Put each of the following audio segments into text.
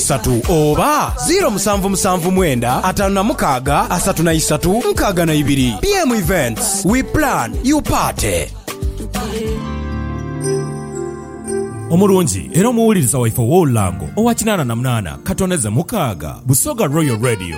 isatu oba ziiro musanvu musanvu mwenda ataanu na mukaaga asatu na isatu nkaaga na ibiri. BM Events, we plan, you party. Omulungi era omuwuliriza waife ow'olulango owa kinaana na munaana katoneze mukaaga, Busoga Royal Radio.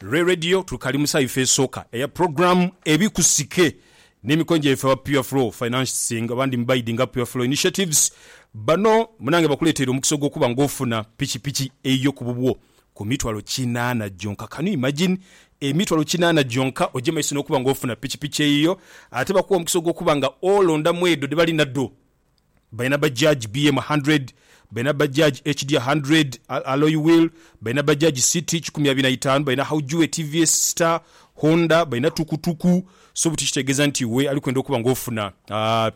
Lwe Radio Twikalimusa ife esooka eya program Ebikusike n'emikono gyaife aba Pure Flow Financing abandi mu baidi nga Pure Flow Initiatives. Bano munange bakuleteire omukisa ogw'okuba nga ofuna pikipiki eyiyo ku bubwo ku mitwalo kinaana gyonka. Can you imagine? Emitwalo kinaana gyonka oje maiso n'okuba nga ofuna pikipiki eyiyo. Ate bakuwa omukisa ogw'okuba nga olondamu edho dhebali nadho. balina Bajaj BM hundred, balina Bajaj HD hundred alloy wheel, balina Bajaj City kikumi abiri na itaanu, balina Haujue, TVS Star, Honda, balina Tukutuku, so butyo kitegeeza nti iwe ali kwenda okuba nga ofuna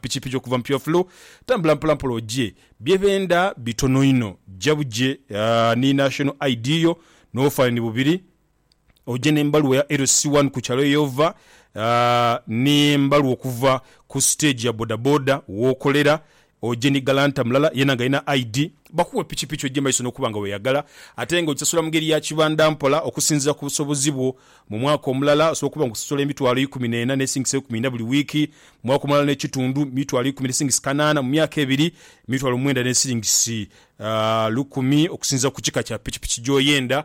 pikipiki okuva mu Pure Flow, tambula mpola mpola ogye. Bye benda bitono inho, jja bugye ni National ID yo n'obufanhanhi bubiri. oje n'embaluwa ya LC one ku kyalo y'ova n'embaluwa okuva ku siteegi ya bodaboda w'okolera, oje ni galanta mulala yeena ng'alina ID. Bakuwe pikipiki oje maiso n'okuba nga weeyagala ate ng'ogisasula mu ngeri ya kibanda mpola okusinziira ku busobozi bwo. Mu mwaka omulala osobola okuba ng'osasula emitwalo eikumi n'ena n'esingisa eikumi ina buli wiiki, mu mwaka omulala n'ekitundu mitwalo ikumi n'esingisi kanaana, mu myaka ebiri mitwalo mwenda n'esingisi lukumi okusinziira ku kika kya pikipiki gy'oyenda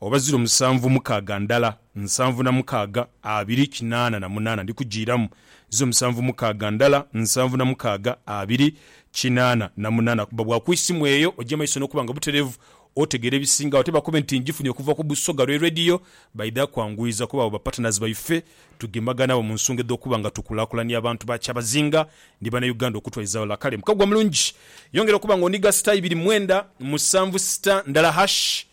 Oba ziro musanvu mukaaga ndala, nsanvu na mukaaga, abiri, kinaana na munaana. Ndi kujiiramu. Ziro musanvu mukaaga ndala, nsanvu na mukaaga, abiri, kinaana na munaana. Kuba bwakwisi mu eyo, oja maiso n'okuba nga butereevu, otegeera ebisingagho. Ate bakobe nti njifunye okuva ku Busoga lwe Radio, baidha kwanguyiza kuba abo ba partners baife. Tugemaga naabo mu nsonga edh'okuba nga tukulaakulania abantu ba kyabazinga ni Banauganda okutwaiza ghalala. Kale Mukagwa mulungi, yongera okuba nga onigha star ibiri mwenda musanvu star ndala hashi.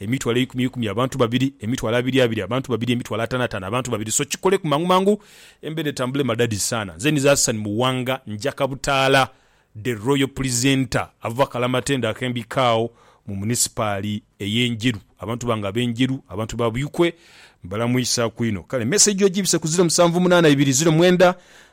Emitwalo eikumi eikumi abantu babiri, emitwalo abiri abiri abantu babiri, emitwalo atano atano abantu babiri so kikoleku mangu mangu embera etambule madadi saana nze nize Hassan Muwanga njaka butaala the royal presenter ava kalamatendo akembikao mu munisipaali eye Njeru abantu bange abe Njeru abantu ba Buikwe mbalamwisaku inho kale message ojibise ku ziro musanvu munana ibiri ziro mwenda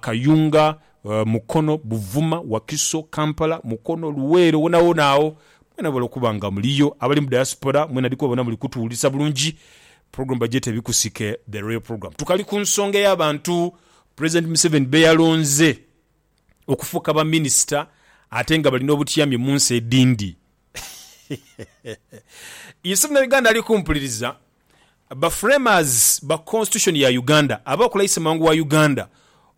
Kayunga, Mukono, Buvuma, Wakiso, Kampala, Mukono, Luweero wonawona agho mwena bwebali okuba nga muliyo. Abali mu diaspora mwena ndikuba bona muli kutuwulirisa bulungi. Program bagyeta Ebikusike The Royal Program. Tukali ku nsonga ey'abantu President Museveni beyalonze okufuuka ba minister ate nga bali n'obutyami mu nsi edhindi. Ye Ssemunauganda ali kumpuliriza? Ba Framers ba Constitution ya Uganda abaakula Issemwango wa Uganda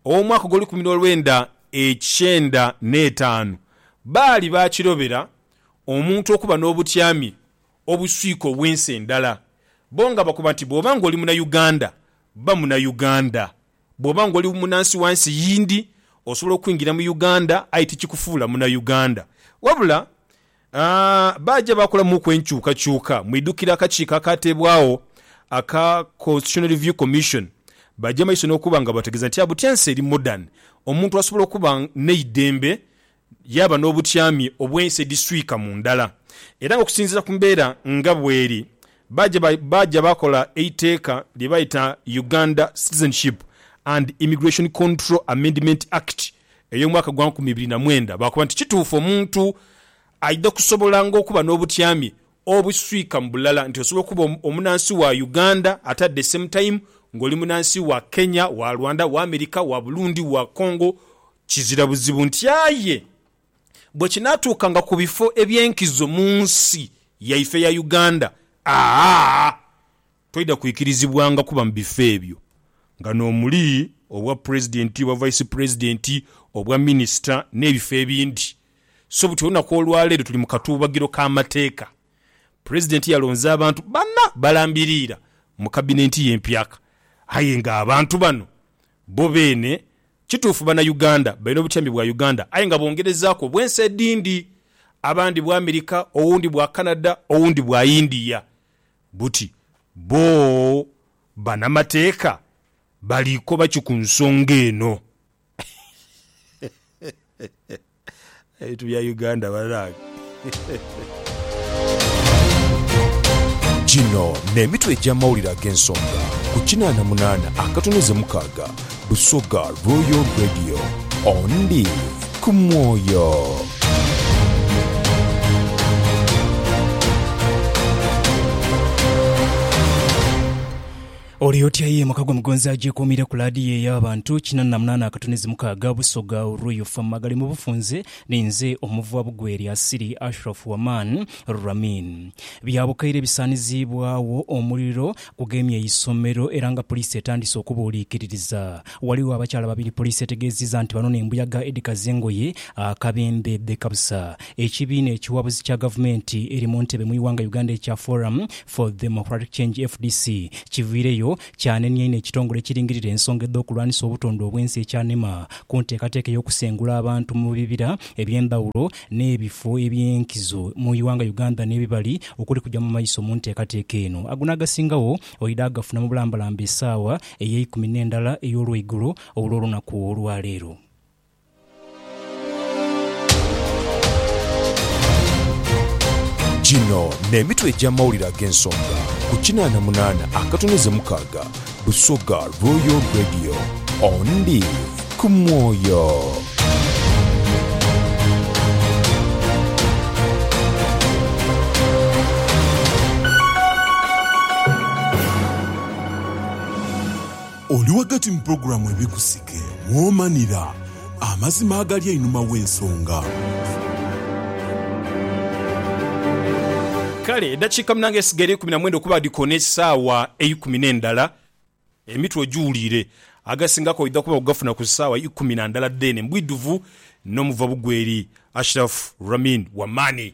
ow'omwaka ogw'olukumi n'olwenda ekyenda n'etaanu baali baakirobera omuntu okuba n'obutyami obuswika obw'ensi endala, bo nga bakoba nti bw'oba ng'oli Munauganda, ba Munauganda. Bw'oba ng'oli munansi wa nsi yindi, osobola okwingira mu Uganda aye tikikufuula Munauganda. Wabula baaja baakolamuuku enkyukakyuka mu idhukira akakiiko akaateebwagho aka Constitutional Review Commission baja maiso n'okuba nga bategeeza nti Abutyense eri modern, omuntu asobola okuba n'eidembe Yaaba n'obutyami obw'ensi edhiswika mu ndala, era nga okusinziira ku mbeera nga bweri, baaja baaja baakola eiteeka lye baayita Uganda Citizenship and Immigration Control Amendment Act ey'omwaka gwa nkumi ibiri na mwenda, baakoba nti kituufu omuntu aidha kusobola nga okuba n'obutyami Obuswika mu bulala nti osobola okuba omunansi wa Uganda ate at the same time nga oli munansi wa Kenya, wa Rwanda, wa America, wa Burundi, wa Congo kizira buzibu nti aye bwe kinaatuukanga ku bifo eby'enkizo mu nsi yaife eya Uganda, aa! Toidha kwikirizibwanga kuba mu bifo ebyo nga n'omuli obwa Pulezidenti, obwa Vice Pulezidenti, obwa Minisita n'ebifo ebindi. So buti olunaku olwaleero tuli mu katuubagiro k'amateeka. Pulezidenti yalonze abantu bana balambiriira mu Kabinenti ye empyaka aye nga abantu bano bo beene kituufu Banauganda, balina obutyambi bwa Uganda aye nga bongerezaaku obw'ensi edindi, abandi bwa Amerika, owundi bwa Canada, owundi bwa India. buti bo banamateeka bali koba ki ku nsonga eno? Ebintu bya Uganda banange. Gino n'emitwe egy'amawulire ag'ensonga ku kinaana munaana akatono ze mukaaga Busoga Royal Radio, ondi ku mwoyo. Oli otya ye mukago mugonzi agyekuumire ku laadiyo ey'abantu kinana na munaana akatunezi mukaaga Busoga Royal FM agali mu bufunze ni nze omuva bugwe lya Siri Ashraf Waman Ramin. Bya bukaire bisaaniziibwawo omuliro Kugemye eisomero era nga poliisi etandise okubuuliikiririza. Ghaligho abakyala babiri poliisi etegeezizza nti bano n'embuyaga edhikaza engoye akabembe dhekabusa ekibiina ekiwabuzi kya gavumenti eri mu ntebe mu ighanga Uganda ekya Forum for Democratic Change, fdc, kiviireyo kyanenia inho ekitongole ekiringirira ensonga edh'okulwanisa obutonde obwensi ekya nema ku nteekateeka ey'okusengula abantu mu bibira eby'endhawulo n'ebifo eby'enkizo mu ighanga Uganda n'ebibali okuli kuja mu maiso mu nteekateeka eno. Ago n'agasingagho oidha agafuna mu bulambalamba esaawa ey'eikumi n'endala ey'olweigulo olw'olunaku olwa leero. Gino n'emitwe egy'amawulire ag'ensonga ku kinaana munaana akatono ze mukaaga. Busoga Royal Radio on ndi ku mwoyo. Oli ghagati mu pulogulaamu Ebikusika. Ghe mwomanira amazima agali einhuma w'ensonga. Kale eddakiika munange edhisigaire eikumi na mwenda okuba dhikoona esaawa eikumi n'endala, emitwe ogiwuliire. Agasingako oidha kuba ogafuna ku saawa ikumi na ndala dheene. Mbwidhuvu n'omuva bugweri Ashraf Ramin Wamani.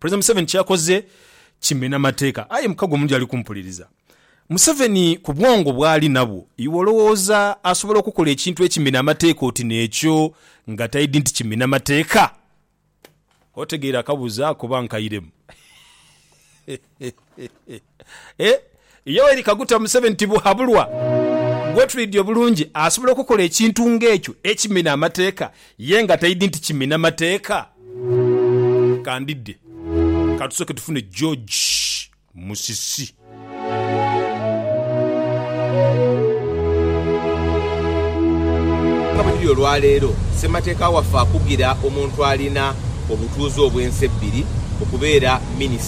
President Museveni kyeyakoze kimena mateeka aye muka gwe omuntu yali kumpuliriza. Museveni ku bwongo bwali nabwo iwe olowooza asobola okukola ekintu ekimena amateeka oti nekyo nga taidi nti kimena mateeka? Otegeera akabuuzo ako bankairemu. Eh, Yoweri Kaguta Museveni Tibuhabulwa gwetwidhi obulungi asobola okukola ekintu nga ekyo ekimina amateeka ye nga taidhi nti kimina mateeka? Kandidde katusoke tufune George Musisi. Nga bwekiri olwaleero, ssemateeka waffe akugira omuntu alina obutuuze obw'ensi ebbiri okubeera minisita.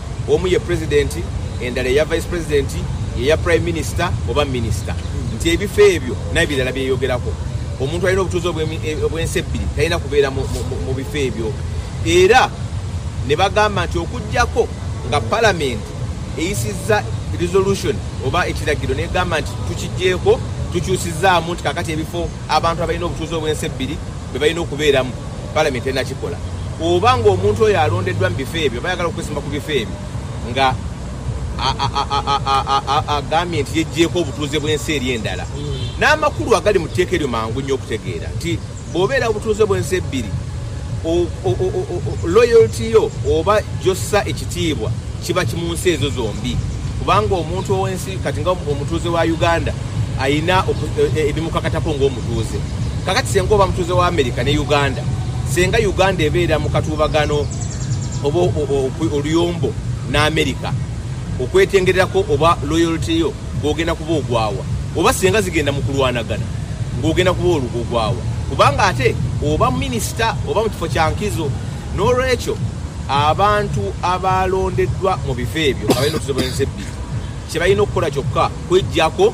omu ye Pulezidenti, endala eya Vice President, ye ya Prime Minister oba Minister, nti ebifo ebyo naye birala byeyogeraku. Omuntu alina obutuuze obw'ensi ebbiri talina kubeera mu bifo ebyo era ne bagamba nti okuggyako nga Palamenti eyisizza Resolution oba ekiragiro n'egamba nti tukiggyeeko tukyusizaamu nti kaakati ebifo abantu abalina obutuuze obw'ensi ebbiri bwe balina okubeeramu, Palamenti enakikola, oba ng'omuntu oyo alondeddwa mu bifo ebyo oba ayagala okwesimba ku bifo ebyo nga agambye nti yeggyeeko obutuuze bw'ensi eri endala. N'amakulu agali mu tteeka eryo mangu nnyo okutegeera nti bw'obeera obutuuze bw'ensi ebbiri, loyalty yo oba gy'ossa ekitiibwa kiba kimu nsi ezo zombi kubanga omuntu ow'ensi kati nga omutuuze wa Uganda alina ebimukakatako ng'omutuuze. mutuuze. Kakati senga oba mutuuze wa America ne Uganda, senga Uganda ebeera mu katuubagano oba oluyombo n'America, okwetengererako oba loyalty yo gw'ogenda kuba ogwa wa. Oba senga zigenda mu kulwanagana, ng'ogenda kuba ogwa wa? Kubanga ate oba minisita oba mu kifo kya nkizo. N'olwekyo abantu abaalondeddwa mu bifo ebyo nga balina otuze bw'ensi ebbiri, kye balina okukola kyokka kweggyako.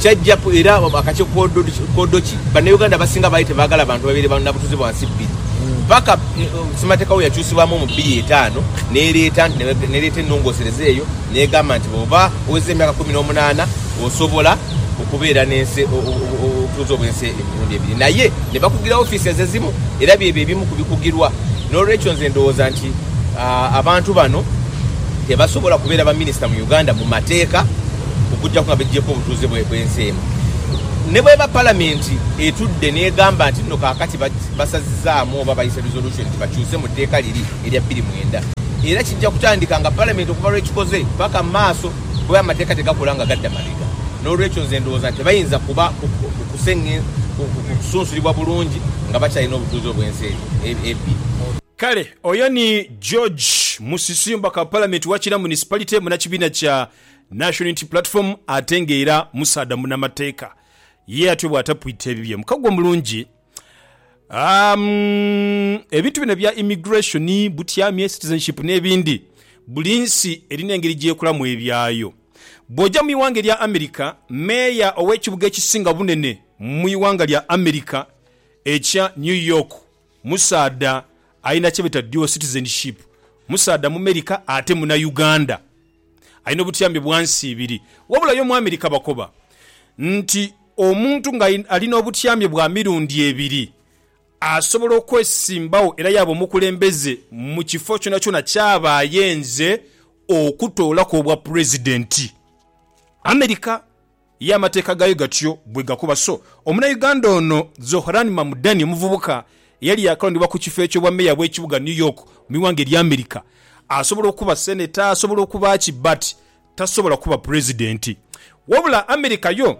Kyajjaku era akakye koodo ki Bannauganda abasinga baali tebaagala bantu babeere ba nabutuuze bwa nsi bbiri paka Ssemateeka weyakyusibwamu mu bbiri etaano nereeta nereeta enongosereza eyo negamba nti bwoba oweza emyaka kumi nomunaana osobola okubeera nensi obutuuze obwensi emirundi ebiri naye nebakugira office ezo ezimu era byebyo ebimu ku bikugirwa nolwekyo nze ndowooza nti abantu bano tebasobola kubeera ba minister mu Uganda mu mateeka. okugyaku nga begyeku obutuuze bw'ensi eno. Ne bweba Palamenti etudde n'egamba nti nno kaakati basazizaamu oba bayise resolution nti bakyuse mu tteeka liri erya bbiri mwenda, era kijja kutandika nga Palamenti okuva lw'ekikoze paka mu maaso kuba amateeka tegakola nga gadda mabega. N'olwekyo nze ndowooza nti tebayinza kuba kusunsulibwa bulungi nga bakyalina obutuuze obw'ensi ebbiri. Kale oyo ni George Musisi omubaka wa Palamenti wa Kira Municipality munakibiina kya. Nation Unity Platform ate nga era musaadha munamateeka ye atyo bwatapwita ebibye. Mukago omulungi um ebintu bino ebya immigration, butyamye, citizenship nebindi buli nsi erina engeri gyekolamu ebyayo. Bwoja mu iwanga erya America, Mayor owekibuga ekisinga obunene mu iwanga lya America ekya New York musaadha alina kyebeta dual citizenship, musaadha mumerica ate muna Uganda. Alina obutuyambi bwa nsi ibiri. Wabula yo mu Amerika bakoba nti omuntu nga ali n'obutuyambi bwa mirundi ebiri asobola okwesimbawo era yaaba omukulembeze mu kifo kyonakyona ky'aba ayenze okutoolaku obwapulezidenti. Amerika. Ye amateeka gaayo gatyo bwe gakoba. So, Omunayuganda ono Zohran Mamdani, omuvubuka eyali yaakalondebwa ku kifo eky'obwameeya bw'ekibuga New York mu ighanga erya America, asobola okuba senator, asobola okuba ki, but tasobola kuba pulezidenti. Wabula America yo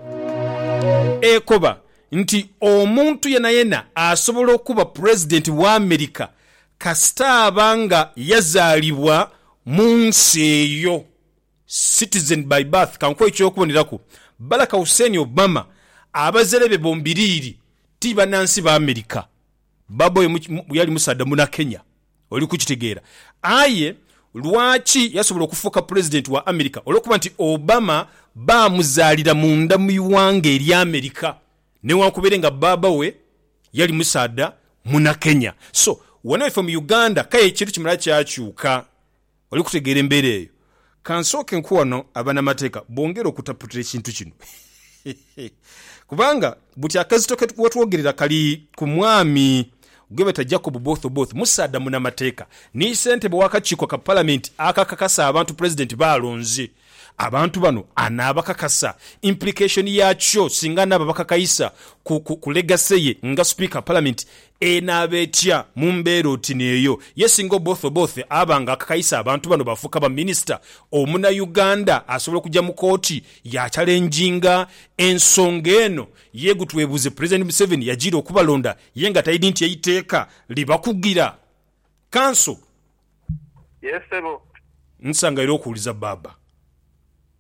ekoba nti omuntu yenayena asobola okuba pulezidenti wa America kasita aba nga yazaalibwa mu nsi eyo. Citizen by birth Kankuwe eky'okuboneraku, Baraka Hussein Obama abazere be bombiriri ti banansi ba America. Baba we yali musaadha muna Kenya, oli kukitegeera. Aye lwaki yasobola okufuuka Pulezidenti wa America? Olw'okuba nti Obama baamuzaalira munda mu ighanga erya America newankubere nga baba we yali musaadha muna Kenya. So, wano ife mu Uganda k'aye ekintu kimala kyakyuka Oli kutegeera embeera eyo? Ka nsooke nkuwe wano abanamateeka bongere okutaputira ekintu kino. Kubanga, buti akazito ke watwogerera kali ku mwami gwebeeta Jacob Oboth Oboth, musaadha munamateeka, ni ssentebe w'akakiiko ka Palamenti akakakasa abantu Pulezidenti b'alonze. Abantu bano anaabakakasa? Implication yakyo singa anaaba abakakaisa ku ku legacy ye nga Sipiika wa Palamenti enaaba etya mu mbeera oti n'eyo? Ye singa Oboth Oboth aba nga akakaisa abantu bano baafuuka ba Minisita, Omunauganda asobola okuja mu kooti ya challenginga ensonga eno? Ye gu twebuuze, Pulezidenti Museveni yajiira okubalonda ye nga taidhi nti eiteeka libakugira? Kanso. Yes ssebo. Nsanga era okuwuliza baaba.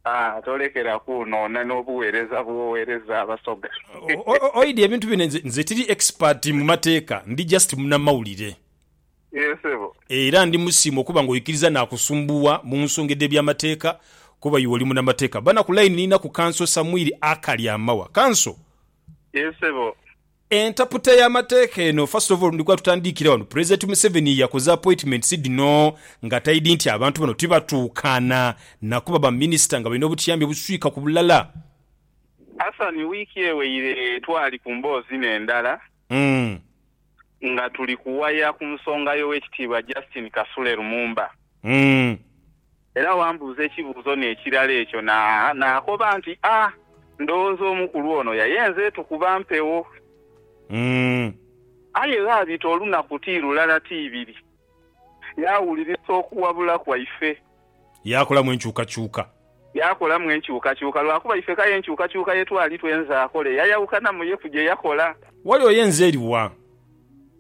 Aah tolekera kwonoona n'obuweereza bw'oweereza Abasoga. Oidhi ebintu bino nze, nze tiri expert mu mateeka, ndi just munamawulire. Yes ssebo. Era ndi musiima okuba nga oikiriza naakusumbuwa mu nsonga edh'ebyamateeka kuba iwe oli munamateeka. Bana ku line ninaku Kanso Samwiri Akalyamawa. Kanso. Yes ssebo. Entaputa ya mateeka eno first of all ndikwa tutandiikire wano president Museveni yakoze appointments dhino nga taidhi nti abantu bano tibatuukaana nakuba ba minister nga balina obutiyambi obuswika ku bulala. Hassan wiiki eweire twali ku mboozi n'endala nga tuli kuwaya ku nsonga y'Owekitiibwa Justine Kasule Lumumba. Era wambuuza ekibuuzo n'ekirala ekyo naakoba nti, A! Ndowooza omukulu ono yayenze tukuba mpewo. Aye ghaabita olunaku ti lulala ti ibiri, yaawulirisa okuwabula kwaife. Yaakolamu enkyukakyuka. Yaakolamu enkyukakyuka, lwakuba ife k'aye enkyukakyuka ye twali twenze akole yayawukanamu ye ku gye yakola. Wali oyenze eri wa?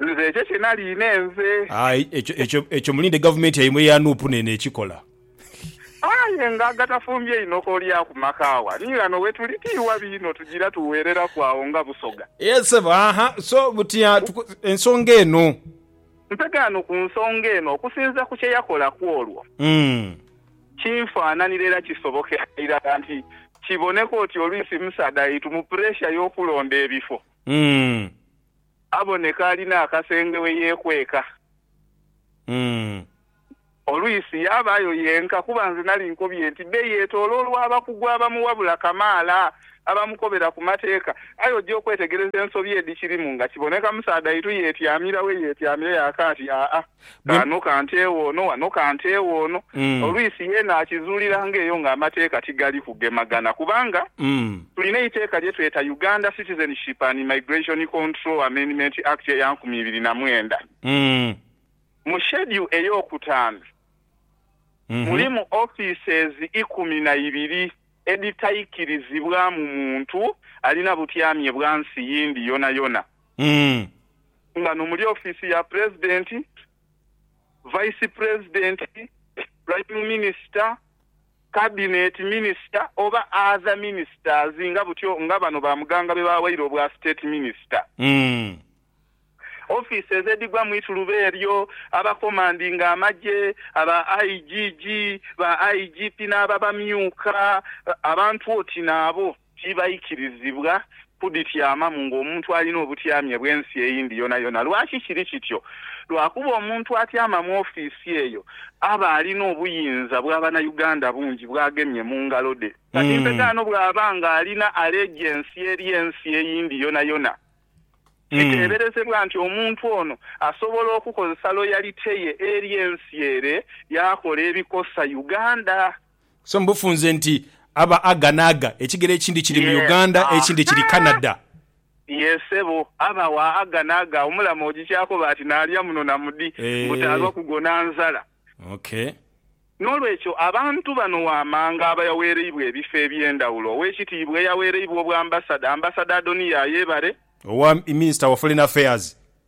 Nze ekyo kye naliine nze. Aye ekyo, ekyo, ekyo mulinde gavumenti yaimwe eya Nup neeno ekikola. Aye nga agatafumbye inho k'olya ku makaawa. Ni ghano we tuli, ti wabi inho tugira tugheereraku agho nga Busoga. Yee, ssebo. Aha, so buti a, tuko, ensonga eno. Ntegaano ku nsonga eno, okusinziira ku kye yakola ku olwo. Umm. Kinfaananira era kisobokera irala nti kiboneka oti olwisi Musaadha yaitumu puresha y'okulonda ebifo. Umm. Aboneka alina akasenge we yeekweka. Olwisi yabaayo yenka kuba nze nali nkobye nti be yeetooloolwa abakugu abamuwabula kamaala, abamukobera ku mateeka. Aye oja okwetegereza ensobi edhikirimu nga kiboneka musaadhaitu yeetyamira we yeetyamira yaakaati, aa. Bwe. Ghano kantewo ono, ghano kantewo ono. Olwisi yeena akizuuliranga eyo nga amateeka tigali kugemagana kubanga tulina eiteeka lye tweta Uganda Citizenship and Immigration Control Amendment Act eya nkumi ibiri na mwenda. Mu Schedule ey'okutaanu mulimu offices ikumi na ibiri edhitaikirizibwamu muntu alina butyamye bwa nsi yindi yonayona. nga n'omuli ofiisi ya Pulezidenti, Vaisi Pulezidenti, Pulayimu Minisita, Kabineti Minisita oba Adha Minisitazi nga butyo nga bano ba Muganga bwe baawaire obwa Siteeti Minisita. Ofiisi ez'edhigwa mu ituluba eryo, abakomandinga amagye, aba IGG, ba IGP n'aba bamyuka abantu oti naabo. Tibaikirizibwa kudhityamamu ng'omuntu alina obutyamye bw'ensi eyindi yonayona. Lwaki kiri kityo? Lwakuba omuntu atyama mu ofiisi eyo aba alina obuyinza bwa Banauganda bungi bw'agemye mu ngalo dhe. Kati mpegaano bw'aba ng'alina alejiensi eri ensi eyindi yonayona, kiteeberezebwa nti omuntu ono asobola okukozesa loyalite ye eri ensi ere yaakola ebikosa Uganda. So mu bufunze nti aba aga n'aga, ekigere ekindi kiri mu Uganda, ekindi kiri Canada. Yee ssebo, aba wa aga n'aga, omulama ogikyakoba ati naalya muno na mudi, mbu taalwa kugona nzala. Okay. N'olwekyo abantu bano wammanga abayaweereibwa ebifo eby'endhawulo, Oweekitiibwa eyaweereibwa Obwambasada, Ambassador Adoniya Ayebare, Owa Minisita wa Foreign Affairs,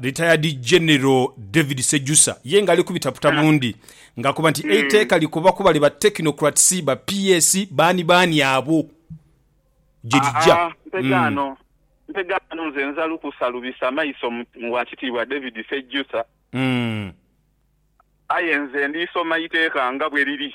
Retired General David Sejusa ye nga ali kubitaputa bundi nga akoba nti eiteeka likoba ku bali ba technocrats, ba PS, baani baani abo gye lija. Mpega ghano nze nza lukusa lubisa maiso mu Wakitiibwa David Sejusa aye nze ndiisoma eiteeka nga bwe liri.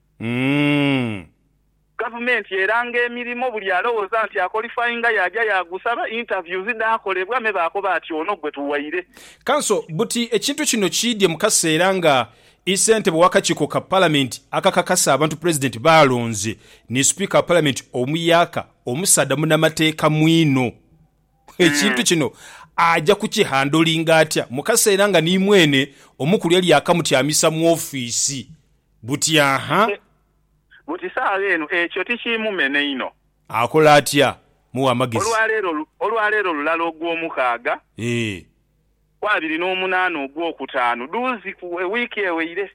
Umm. Gavumenti eranga emirimo buli alowoza nti akolifayinga yaja yagusaba, interviews dhakolebwa me bakoba ati ono gwe tuwaire. Kanso buti ekintu kino kiidye mu kaseera nga i sentebe wakakiiko ka palamenti akakakasa abantu pulezidenti baalonze ni sipiika wa palamenti omuyaka omusaadha munamateeka mwino. Ekintu kino aja ku ki handolinga atya mu kaseera nga ni mwene omukulu yali yakamutyamisa mu ofiisi Butyaha? Buti saagha eno ekyo tikiimumena inho? Akole atya? Muwe amagezi. Olwa leero lulala ogw'omukaaga, ku abiri n'omunaana ogw'okutaanu dhuuzi wiiki eweire,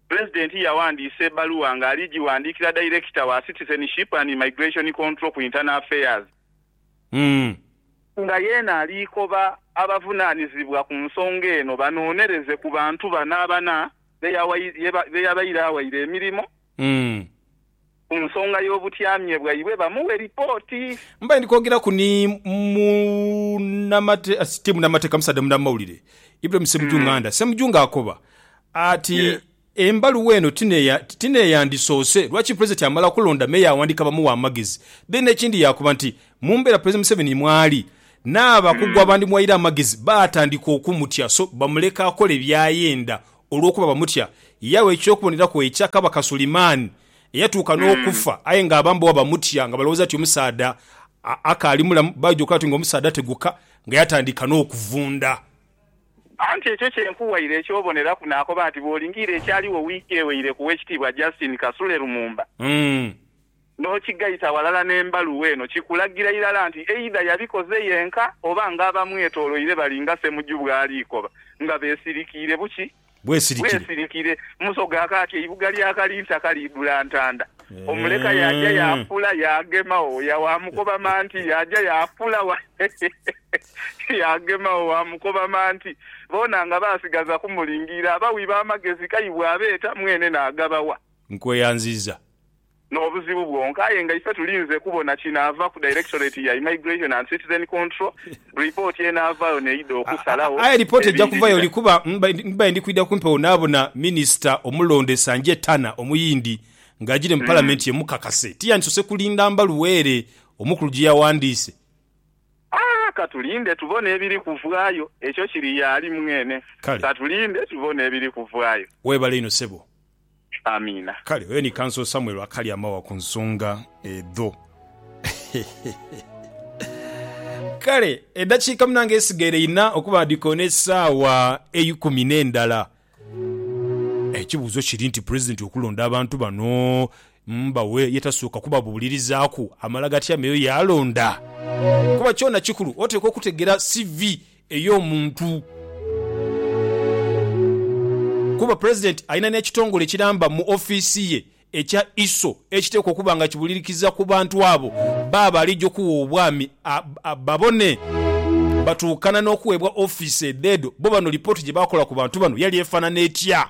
Pulezidenti yawandiisa ebbaluwa ng'ali gighandiikira Dayirekita wa Citizenship and Immigration Control ku Internal Affairs, Umm. Nga yeena aliikoba abavunaanizibwa ku nsonga eno banoonereze ku bantu bana abana be yabaire awaire emirimo ku nsonga y'obutyamye bwaibwe bamuwe lipooti. Mbaire ndi kwogeraku ni ti munamateeka musaadha munamawulire Ibrahim Ssemuju Nganda. Ssemuju ng'akoba ati. Embaluwa eno ti n'eyandisoose. Lwaki Pulezidenti amala kulonda me yaawandiika bamuwa amagezi? Then n'ekindi yaakoba nti, mu mbeera Pulezidenti Museveni mw'ali, n'abakugu abandimuwaire amagezi baatandika okumutya so bamuleka akole by'ayenda olw'okuba bamutya. Yagha eky'okuboneraku ekya Kabaka Suleiman eyatuuka n'okufa aye ng'abambowa bamutya nga balowooza nti omusaadha akaali mulamu baidhi okulaba ati ng'omusaadha ateguka nga yatandika n'okuvunda. Anti ekyo kye nkuwaire eky'oboneraku, naakoba nti bw'olingiira ekyaligho wiiki eweire ku Owekitiibwa Justine Kasule Lumumba, n'okigaita ghalala n'embaluwa eno, kikulagira irala nti eidha yabikoze yenka oba ng'abamwetoloire bali nga Ssemuju bw'alikoba nga beesirikiire buki bwesirikire. Bwesirikire. Muso ga kaati eibuga lya Kalinta kaliidhula ntanda. Omuleka yaaja yaafula yaagema wo wa mukoba manti yaaja yaafula wa yaagema wo wa mukoba manti. Boona nga baasigaza kumulingiira. Abawi b'amagezi kaibwe abeeta, mwene naagabawa. Nkweyanziza n'obuzibu bwonka aye nga ife tulinze kubona kinaava ku Directorate ya Immigration and Citizen Control, ripooti enaavaayo n'eidha okusalagho Aye lipooti eja kuvayo ebindirira. likuba ndibaire ndi kwidha kumpi awo naabona minisita omulonde Sanjay Tanna Omuyindi ng'ajiire mu Palamenti ye mukakase. Tiyandisoose kulinda mbaluwa ere omukulu gye yawandiise. Aah, ka tulinde tubone ebiri kuvaayo. Ekyo kiri y'ali mwene. Kale. Ka tulinde tubone ebiri kuvaayo. Weebale inho ssebo. Amiina. Kale oyo ni Council Samuel akali amawa ku nsonga edho. Kale edakiika munange esigaire yina okuba dhikoona esaawa eikumi nendala. Ekibuuzo kiri nti President okulonda abantu bano mbawe ye tasooka kubabuulirizaaku amala gatya meyo yalonda? Kuba kyona kikulu oteekwa okutegera CV ey'omuntu. Kuba Pulezidenti alina n'ekitongole ekiramba mu ofiisi ye ekya ISO ekiteekwa okuba nga kibulirikiza ku bantu abo baaba alija okuwa obwami babone batuukana n'okuweebwa ofiisi edheedo. Bbo bano lipooti gye baakola ku bantu bano yali efaanana etya?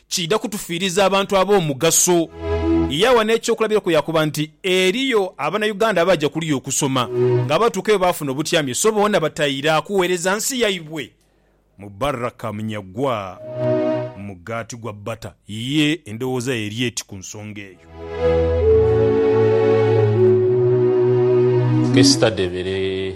Kiidha kutufiiriza abantu ab'omugaso. Yaagha n'ekyokulabirako yaakoba nti, Eriyo Abanauganda abaaja kuliya okusoma, ng'abaatuukayo baafuna obutyamye so boona bataira kugheereza nsi yaibwe. Mubaraka Munyagwa, Mugaati gwa Bbata, ye endowooza ye eri eti ku nsonga eyo. Esther Debere.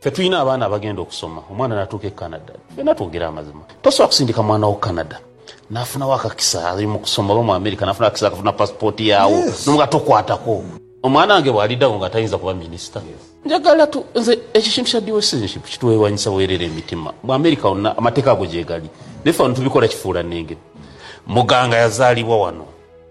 Ffe tulina abaana abagenda okusoma, omwana natuuka e Canada. Ffena twogere amazima, tosobola kusindika mwana wo Canada nafunawo akakisa ali mu kusoma oba mu America nafunawo akakisa akafuna passport yawo no nga tokwatako. Omwana wange bwalidagho nga tayinza kuba minister. Njagala tu, nze ekyo ekintu kya dual citizenship kitwewanyisa bwerere emitima. Mu America wonna amateeka ago gyegali naye ffe wano tubikola kifuulannenge. Muganga yazaalibwa wano.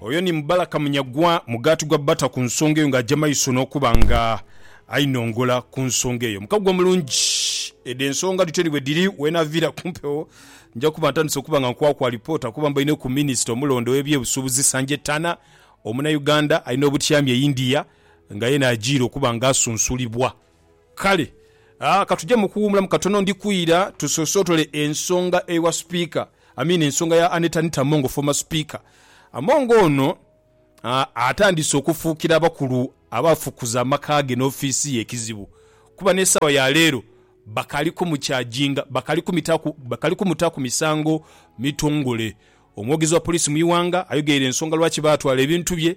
Oyo ni Mubaraka Munyagwa, mugaati gwa bata ku nsonga eyo ng'aja maiso n'okuba nga ainongola ku nsonga eyo. Mukago mulungi. Edho ensonga dhityo ni bwe dhiri. Weenaviira ku mpewo nja kuba ntandise okuba nga nkwakwa alipoota kuba mbaine ku minisita omulonde ow'ebyebusuubuzi Sanjay Tana, Omunayuganda alina obutyami e India nga yeena ajiire okuba nga asunsulibwa. Kale, a, ka tuje mu kuwuumulamu katono. Ndi kwira tusosootole ensonga ewa Sipiika, I mean ensonga ya Annet Anita Among, former Speaker. Among ono, a, atandise okufuukira abakulu abafukuza amaka ge n'ofiisi ye ekizibu kuba n'esaawa ya leero bakaali kumukyajinga, bakaali kumitaaku, bakaali kumutaaku misango mitongole. Omwogezi wa poliisi mu iwanga ayogeire ensonga lwaki baatwala ebintu bye